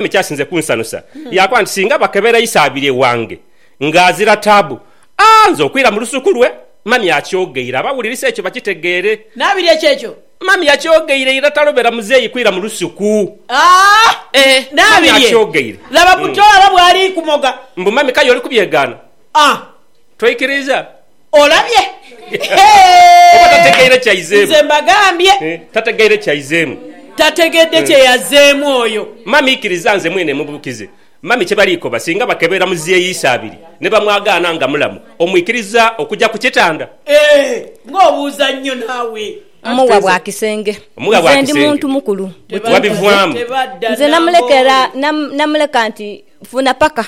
ekyasinze kunsanusa yaakoba nti, Singa bakebera Isaabirye wange ng'azira taabu, a nze okwira mu lusuku lwe. Mami akyogeire abawulirisa ekyo bakitegeere. Nabirye kyekyo. Mami yakyogeire ira talobera muzeeyi kwira mu lusuku. A Ee, mami Nabirye! akyogeire. Laba buto aba bw'ali kumoga. Mbu mami k'aye oli kubyegaana? A. Toikiriiza? Olabye? Oba tategeire kyaizeemu. Nze mbagambye. Tategeire kyaizeemu. Tategedde kye yazzeemu oyo. Mummy ikiriza nze mwene mubukize Mummy kye bali koba singa bakebera muzei Isabiri ne bamwagaana nga mulamu omwikiriza okuja ku kitanda? Eeh nga obuuza nnyo naawe. Mugha bwa kisenge. Mugha bwa kisenge. Nze ndi muntu mukulu. Wabivaamu. Nze namulekera namuleka nti funa paka.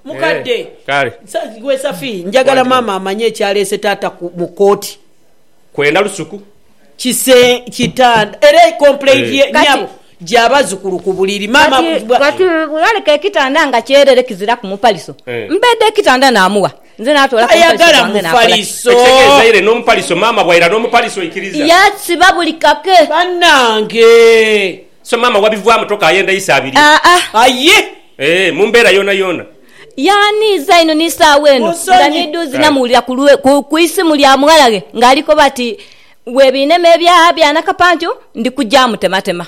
Mukadde, gwe Safi, njagala maama amanye ekyaleese taata mu kooti. Kwenda lusuku. Kise, kitanda era complaint ye nyabo gya bazukulu ku buliri. Maama bwa. Kati yaleka ekitanda nga kyerere kiziraku mupaliso. Mbeedha ekitanda namuwa, nze natoola ku mupaliso gwange nakola ki? Tayagala mupaliso. Ekitegeeza ire n'omupaliso, maama bwaira n'omupaliso oikiriza? Yasiba buli kake. Banange! So maama wabivwamu toka ayenda eisa abiri. Aa. Aye! Eeh mu mbeera yoona yoona. Yaaniiza inho ni saagho eno Mu nga nsonyi. niidhuuzi Aye. namuwulira ku lwe, ku, ku isimu lya mughalaghe nga ali koba ati, Bwebinema ebya, bya Nakapancu, ndi kuja mutematema.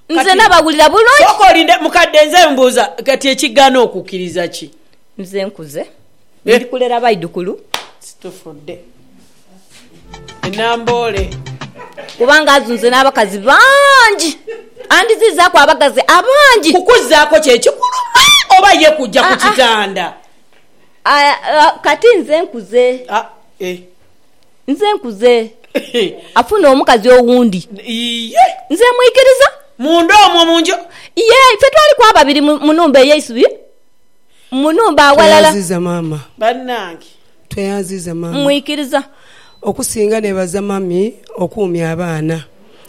Nze Kati, nabawulira bulungi. Sooka olinde, mukadde, nze mbuuza, kati ekigaana okukkiriza ki? Nze nkuze. Eh. Ndi kulera baidhukulu. Situfudde. e Namboole. Kubanga azunze n'abakazi bangi, andhiziizaaku abaghazi abangi. Kukuzaako kye kikulu aa, oba ye kuja ku kitanda? Aa, aa, kati nze nkuze. Aa, ee. Nze nkuze. Afune omukazi owundi. Iye. Nze mwikiriza. Munda omwo mu nju. Yee, ife twaliku ababiri mu nhumba ey'eisubi. Mu nhumba aghalala. Tweyanziza maama. Banange. Tweyanziza maama. Mwikiriza. Okusinga nebaza mummy okuumya abaana.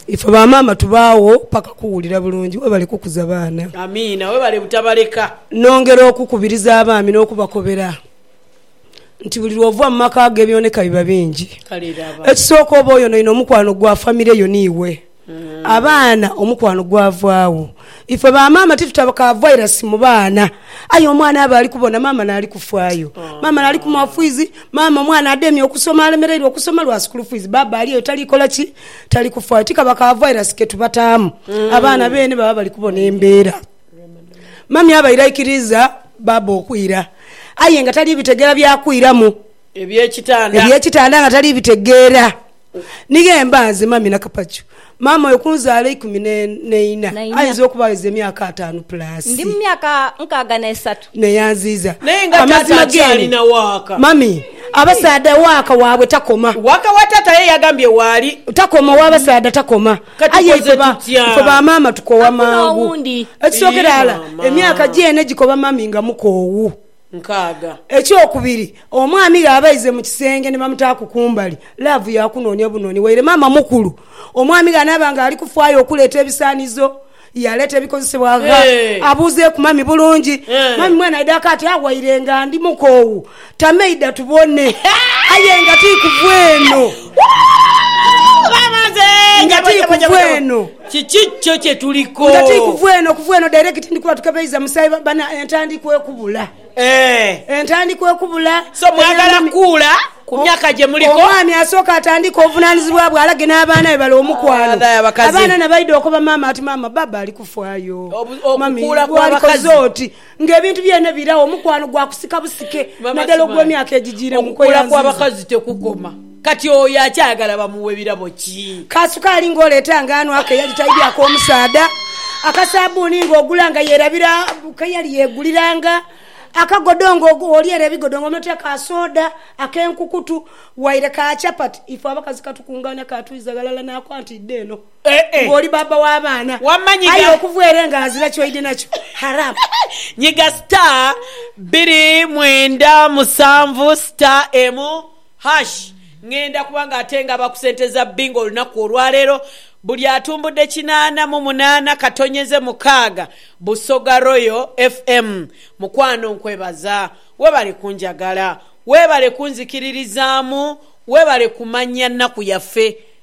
Ife ba maama tubaagho paka kuwulira bulungi. Webale kukuza baana. Amiina. Webale butabaleka. Nongera okukubiriza abaami nokubakobera nti buli lwoova mu maka ago ebyoneka biba bingi. Kale laba. Ekisooka oba oyonoine omukwano gwa famire yo ni iwe. Abaana omukwano gwavaagho. Ife ba maama titutabaka virus mu baana. Aye omwana aba ali kubona maama n'ali kufaayo. Maama n'ali kumuwa fiizi, maama omwana ademye okusoma alemereirwe okusoma lwa school fees, baaba ali eyo tali kola ki? Tali kufaayo. Tikaba ka virus ke tubataamu. Abaana beene baba bali kubona embeera. Mummy aba airaikiriiza baaba okwira aye nga tali bitegeera bya kwiramu. Eby'ekitanda. Eby'ekitanda nga tali bitegeera. Ni ghemba nze Mummy Nakapaju. Maama oyo kunzaala ikumi n'eina ayinza okuba agheza emyaka ataanu plus. Ndi mu myaka nkaaga n'esatu. Neyanziiza. Naye nga taata akyali na waaka. Mummy abasaadha waaka waabwe takoma. Waaka wa taata aye yagambye waali. Takoma, ow'abasaadha takoma. Kati aye ife bamaama tukoowa mangu. Ekisooka irala emyaka gyeene gikoba mummy nga mukoowu. nkaaga. Ekyokubiri, omwami ghe aba aize mu kisenge ni bamutaaku kumbali, laavu ya kunoonia bunoonia. Waire maama mukulu, omwami ghe anaaba nga ali kufaayo okuleeta ebisaanizo, yaaleeta ebikozesebwa gha, abuuzeeku mami bulungi, Mami mwene aidha aka ati, Ah, waire nga ndi mukoowu, tama eidha tubone. Aye nga ti kuva eno. Nga ti kuva eno. Kiki kyo kye tuliko? Nga ti kuva eno, kuva eno direct ndi kuba tukebeiza musaayi ba, bana, entandikwa ekubula. Eeh. Entandikwa ekubula. So mwagala Eby'enimi- kuula ku myaka gye muliko? Omwami asooka atandike obuvunanizibwa bwe alage n'abaana be bale omukwano. Ah, dai abakazi. Abaana nabaidha okoba maama ati, Maama, Baba ali kufaayo. Obu- Mummy, okukuula kw'abakazi. gwalikoze oti. Nga ebintu byene biragho, omukwano gwa kusika busike, naddala ogw'emyaka egijiiremu. Okukula kw'abakazi tekukoma. Kati oyo akyayagala bamuwe birabo ki? Ka sukaali ng'oleeta nga ano ake yali taidhyako omusaadha, akasabbuuni ng'ogula nga yeerabira ke yali yeeguliranga, akagodo ng'olyera ebigodo nga onootia ka sooda, ak'enkukutu, waire ka chapati. Ife abakazi katukungaania, kaatwiza ghalala, n'akwata idha eno. nga oli baaba wa baana aye okuva ere nga ghazira kyoidhi nakyo. Haram. Nyiga star biri mwenda musanvu star emu hash ngenda kubanga ate ngaba ku sente za bingo olunaku olwaleero buli atumbudde kinaana mu munaana katonyeze mukaaga Busoga Royal FM mukwano nkwebaza webale kunjagala webale kunzikiririzaamu webale kumanya nnaku yaffe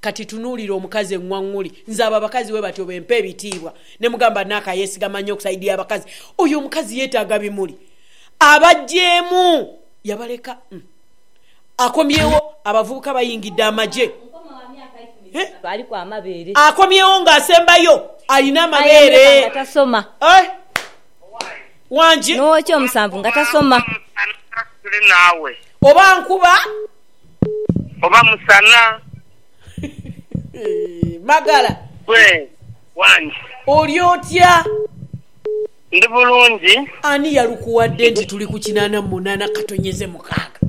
Kati tunuulira omukazi eng'wang'uli. Nze abo abakazi bwe batyo be mpa ebitiibwa. Ne mugamba Naka yeesigama nnyo ku sayidi y'abakazi. Oyo omukazi yeetaaga bimuli. Abaggyeemu! Yabaleka. Uhm. Akomyewo, abavubuka bayingidde amagye. Huh? Aliku amabeere. Akomyewo nga asembayo, alina amabeere. Aye omuleka nga tasoma. Eh? Wangi. N'ow'okyomusanvu nga tasoma. Oba nkuba. Oba musana. Magala. Gwe wange. Oli otya? Ndi bulungi. Ani yalukuwadde nti tuli ku kinaana mu munaana katonyeze mukaaga?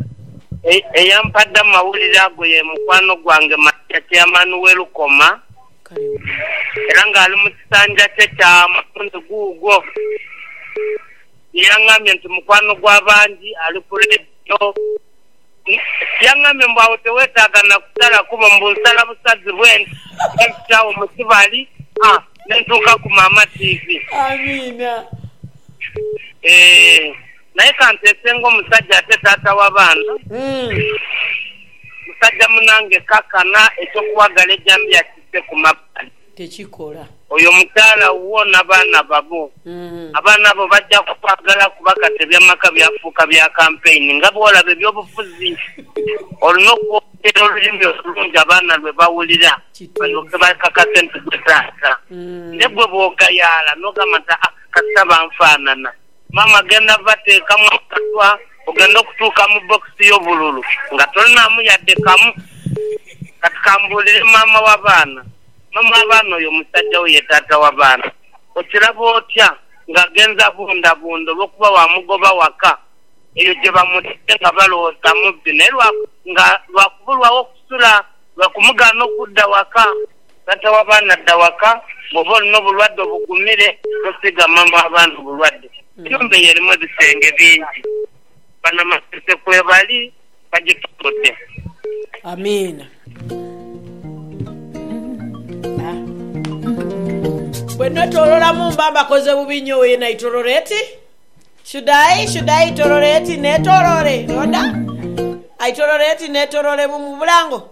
Eyampadde amawulire ago ye mukwano gwange Maria Chairman w'e Lukoma era ng'ali mu kisanja kye kya mulundi guugwo. Ye yangambye nti mukwano gw'abangi ali ku leediyo. Yangambye mbu agho tewetaaga na kusala kubo mbu nsala busazi bwene nga nzita agho mu kibali a ne ntuuka ku Maama Tiivi. Amiina. Eeh naye kanteese ng'omusajja ate taata w'abaana, musajja munange, kaakana eky'okuwagala ejambiya kisse ku mabbali. tekikola. Oyo mukyala wuwo n'abaana babo. Abaana bo baja kukwagala kuba kati eby'amaka byafuuka bya kampeyini. Nga bw'olaba eby'obufuzi, olina okwogera olulimi olulungi abaana lwe bawulira balyoke bakakase nti gwe taata. Naye gwe bw'ogayaala n'ogamba nti, Aa, kasita banfaanana. Maama agenda bateekamu akatwa ogenda okutuuka mu bokisi yo bululu nga tolinaamu yadde kamu. Kati kambuulire maama wa baana, maama wa baana oyo musajja wo ye taata wa baana. Okiraba otya nga agenze abundabunda olwokuba wamugoba waka eyo gye bamutadde nga balowooza mubbi naye nga lwa kubulwawo kusula lwa kumugaana okudda waka? Taata w'abaana dha waka bw'oba olina obulwadde obugumire, tosiiga mama w'abaana obulwadde. Enhumba eyo erimu ebisenge bingi. Banamasense kwebali bagitunudde. Amiina. Bwe netoolola mu mba mbakoze bubi nnyo. Oyo naitolola eti? Should I? Should I itolola eti? Neetoloole, Rhoda? Aitolola eti? Neetoloole mu bulango?